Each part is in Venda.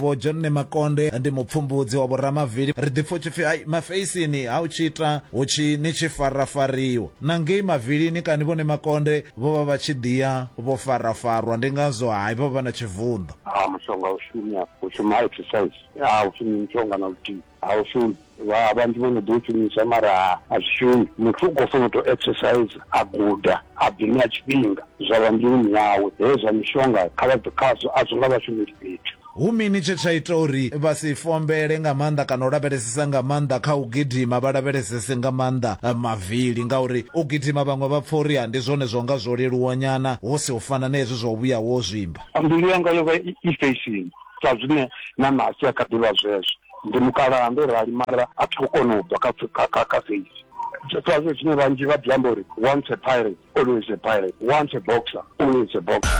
vho john makonde ndi mupfumbudzi wa vhoramavili ri ḓipfa u tshipfi ai mafeisini ha u tshi ita hu tshi ni tshi farafariwa na ngei mavilini kani vhone makonde vho vha vha tshi ḓiya vho farafarwa ndi ngazwo hai vha vha na tshivunḓo a mushonga u shumi afho u shuma exercise a u shumi mushonga na luthihi A u shumi vha vhanzhi vho no ḓo shumisa mara a zwi shumi muthu u khou funa u tou exercise a guda a ḓi ṋea tshifhinga zwa vha mbiluni yawe hezwi zwa mishonga kha vha bve khazwo a zwi nga vha shumeli fhethu. Hu mini tshe tsha ita uri vha si fombele nga maanḓa kana u lavhelesesa nga maanḓa kha u gidima, vha lavhelesese nga maanḓa mavili? Ngauri u gidima vhaṅwe vha pfa uri ha ndi zwone zwo nga zwo leluwa nyana hu si u fana na hezwi zwa u vhuya wo zwimba. Mbilu yanga yo vha i fesheni. Sa zwine na Nasi a kha ḓi vha zwezwo. Ndi mukalaha, ndo rali, mara a thi khou kona u bva kha, kha, kha, kha feisi. Sa zwine vhanzhi vha ḓi amba uri, Once a pirate, always a pirate, once a boxer, always a boxer.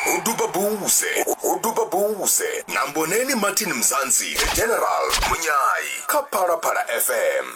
Ho duba buze, ho duba buze na Mboneni Martin Mzansi, The General, Munyayi, kha Phalaphala FM.